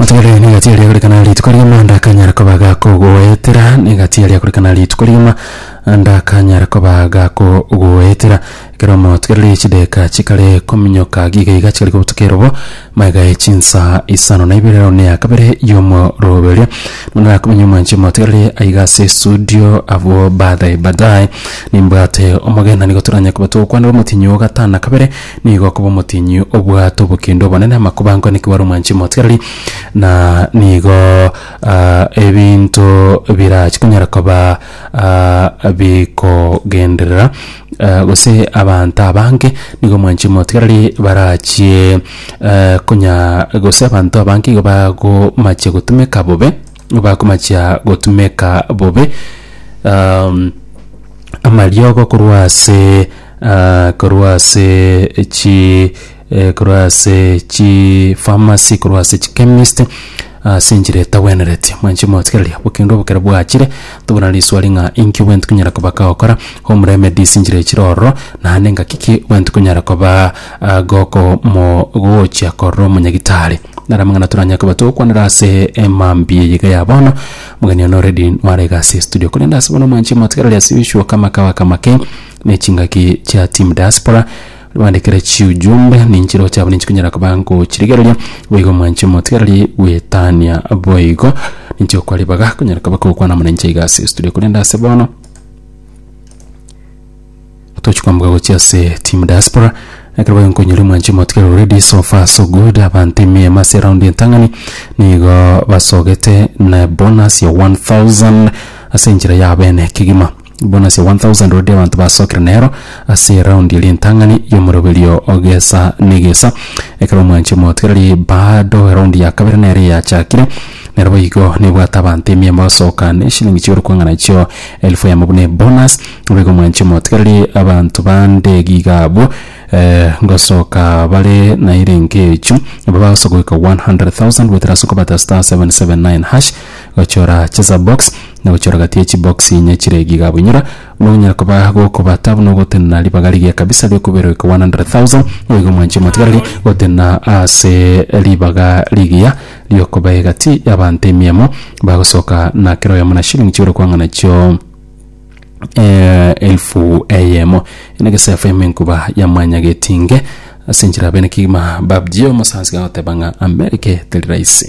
Otigare n'egati eria korikana rituko rigima ndakanyara koba gakogoetera n'egati eria korikana rituko rigima ndakanyara koba gakogoetera ekero omotigereri chideka chikare kominyoka iga iga chikare kobutuka erobo magae chinsa isano na ibere rero neya kabere y'omoroberio narakomenye omwanchi omotigereri aiga ase esudio abwo baadaye baadaye nimbwate omogenda nigo toranyare koba togokwanera omotinyi o gatano na kabere Nigo akoba omotienyi obwate obokendo obonene, amakuba ankwane ekiwara omwanchi omotigareri, na nigo ah, ebinto birachi konyara koba ah, bikogenderera eh, gose abanto abange nigo omwanchi omotigareri barachie eh, konya gose abanto abange igo bagomachia gotumeka bobe bakomachia gotumeka bobe um, amariogo korwa ase Ah, korwa ase chi eh, korwa ase chi pharmacy korwa ase chi chemist ase enchera etagwenereti mwanchi motigereria bokendo obokere bwachire tobona riswari ng'a inki gwenti konyara koba kagokora home remedies inchera echire ororo naende ngaki ki gwenti konyara koba ah, goko mo gochia korora omonyagitari nara amang'ana toranyare koba togokwanera ase emambia eye iga ya bono mgeni one already nware iga ase estudio korende ase bono mwanchi motigereria ase gochia okamaka okamake Ne chingaki chia team diaspora bandikire chiujumbe ninchiro chabo ninchikunyara koba ngochirigereria boigo mwanchi omotigareri gwetania boigo ninchio kwaribaga kunyara koba kogokwana amo ninche iga ase studio korende ase bono tochi kwambuka gochia ase team diaspora ekero boigo nkonyora mwanchi omotigareri already so far so good abanto emiemo ase round entang'ani nigo basogete na bonus ya 1000 ase enchera yabo ene kegima. Bonsi 1,000 baria abanto basokire nero ase eraundi ya ritang'ani y'omoroberio gesa negesa. Ekero omwanchi omotwereiri bado eraundi ya kabere nere yachakire, nero boigo nebwate abanto emiamba basoka ne shilingi chi'orokong'ana echio elfu eyemo buna ebonus. Naboigo omwanchi omotwereiri abanto bande giga abwo ngosoka bare nairenge echu, aba bagosoka goika 100,000 goetera ase okobata *779#. Gochora chesa box na gochora gati ye chibox inye chire giga abunyora buna gonyara koba gokobata buna ogotenena ribaga rigiya kabisa riokobera oiko 100,000 oigo mwanche motigareri gotenena ase ribaga rigiya riokoba egati yabanto emiemo bagosoka na kera oyomo na shilling chibere kwang'ana chio elfu eyemo ene gesaifo yemenkuba ya mwanya getinge ase enchera bene kegima babjio omosansi gagoteba ng'a America teri raisi.